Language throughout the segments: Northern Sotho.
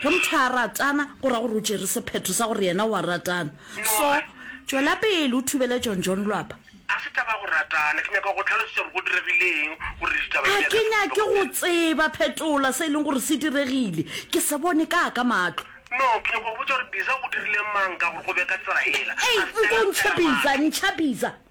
Ge motho a ratana, go ra gore o tšere sephetho sa gore yena o a ratana. So, tšwela pele o thubele John John lwapa. Ga se taba ya go ratana. Ke nyaka go go hlalosetša gore go diregile eng gore ditaba di Ga bjale ke di nyake go fetoge. tseba. Phetola se e leng gore se diregile. Ke se bone ka ka mahlo. No, ke nyaka go go botša gore Biza o dirile mang ka gore go be ka tsela yela. Ei, A se nko ntšha Biza, ntšha Biza.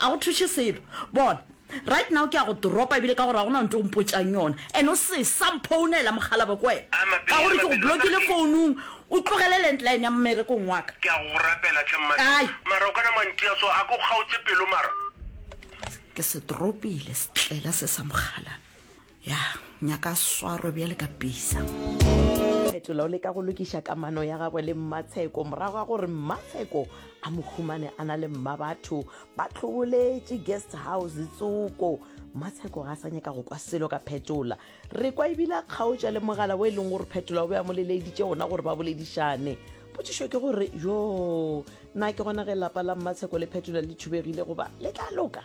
A go thuše selo? Bona, right now ke ya go toropa, ebile ka gore ga go na ntho o mpotšang yona, and o se sa mphounela, mokgalabje, ke wena, ka gore ke go blokile founung, o tlogele landline ya mmerekong wa ka. Ke a go rapela, hle mmadi. Kae? Mara o kana mantia so, a ke o kgaotše pelo mara? Ke se toropile, setlela se sa mokgalabje. ya nyaka swaro bjale ka pisa fetola o leka go lokiša kamano ya gagwe le mmatsheko morago ga gore mmatsheko a mo humane a na le mma batho ba tlhoboletše guest house tsoko mmatsheko ga a sa nyaka go kwa selo ka phetola re kwa ebile a kgaotša le mogala wo e leng gore phetola o be a mo leleeditše gona gore ba boledišane potšišo ke gore yo na ke gona ge lapa la mmatsheko le phetola le thubegile goba le tla loka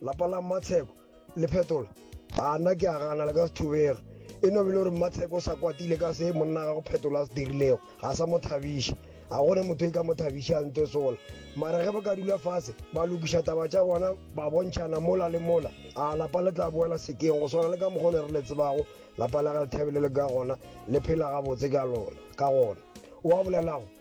Lapa la Mmatsheko le phetola. A nna ke a gana le ka se thubege. E no bile gore Mmatsheko o sa kwatile ka se monna ga go phetola a se dirilego. Ga sa mo thabiša. Ga gona motho e ka mo thabiša a ntwe sola. Mara ge ba ka dula fase ba lokiša taba tša bona ba bontšhana mola le mola, a lapa le tla boela sekeng go swana le ka mokgwa o ne re le tsebago lapa la ga Lethabile le ka gona le phela gabotse ka lona, ka gona. O a bolelago?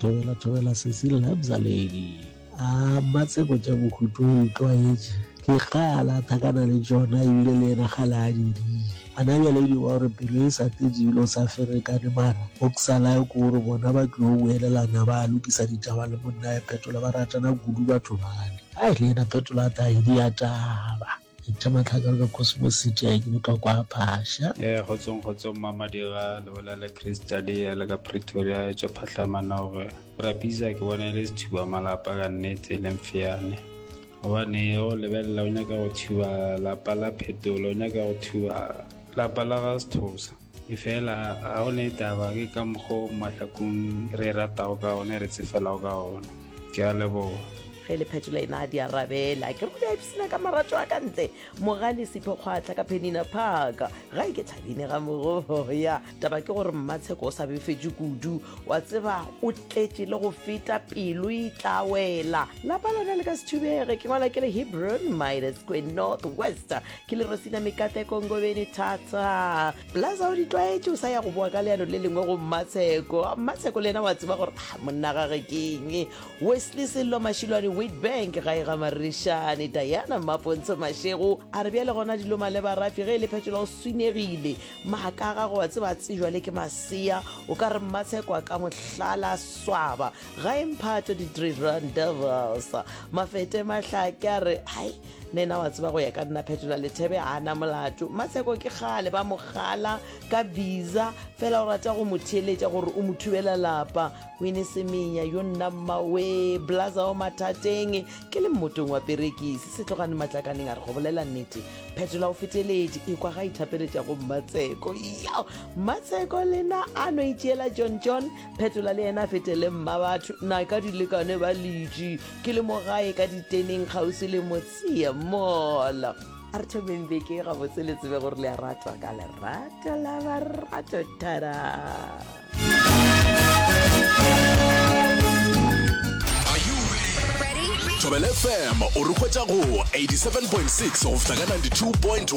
Thobela thobela sesi lebza lady. A mma tseko tša bohutu o itlwaetše? Ke kgale a thakana le tšona ebile le yena kgale a di dile. A na bjale edi wa gore pelo e sa tetše ebile o sa ferekane mara o xalayo ke gore bona ba tliyo boelelana ba lokisa ditaba le monnaye Phetola ba ratana kudu batho bale. Ai le yena Phetola a tla edi ya taba. Ithema tlhaka ka Cosmo City a ke botwa kwa Phasha. Ee, kgotsong kgotsong mma Madira le bolela le Chris Talia le ka Pretoria e tswa phatlama naoge Rapiza ke bona e le sethuba malapa ka nnete e leng feane gobane go lebelela o nyaka go thuba lapa la phetolo o nyaka go thuba lapa la ga sethosa efela ga o ne taba ke ka mokgo mahlakong re ratago ka one re tsefelago ka one ke a leboga ge le phetola ena a di arabela ke go ipsina ka marato a ka ntle mogale sephe kgwatlha ka penina park ga e ke thabine ga mogoya taba ke gore mmatsheko o sa befetše kudu wa tseba o tletše le go feta pelo e tla wela lapa lona le ka se thubege ke ngwala ke le hebron minus queen north west ke le rosina mekate kongobeni thata plaza o di tlwaetše o sa ya go boa ka leano le lengwe go mmatsheko mmatsheko le yena wa tseba gore ah, monna gage keng wesley sello mashilwane witbank ga e ga marešane diana mmapontsho mashego a re bjale gona dilo maleba rafi ge e le phetola o swinegile maaka ga go wa tseba tsejwa le ke masea o ka re mmatsheko a ka mohlala swaba ga e mphato di-three run devils mafete mahlake a re hai nena wa tseba go ya ka nna phetola lethebe a na molato matsheko ke gale ba mogala ka visa fela o rata go mo theeletša gore o mo thubela lapa wine semenya yo nna mmawe blaza o mathateng ke le mmotong wa perekisi se tlogane matlakaneng a re go bolela nnete phetola o feteledi e kwa ga ithapeletša go mmatsheko yo mmatsheko lena a no itšeela john john phetola le yena a fetele mma batho na ka dilekane ba ledi Ke le mo gae ka diteneng kgauswi le motsie mall. A re thomeng beke gabotse le tsebe gore le a ratwa ka lerato la barato tara thobele fm o re hwetša go 87.6 go fihla ka 92.1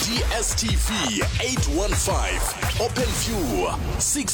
dstv 815 open view 6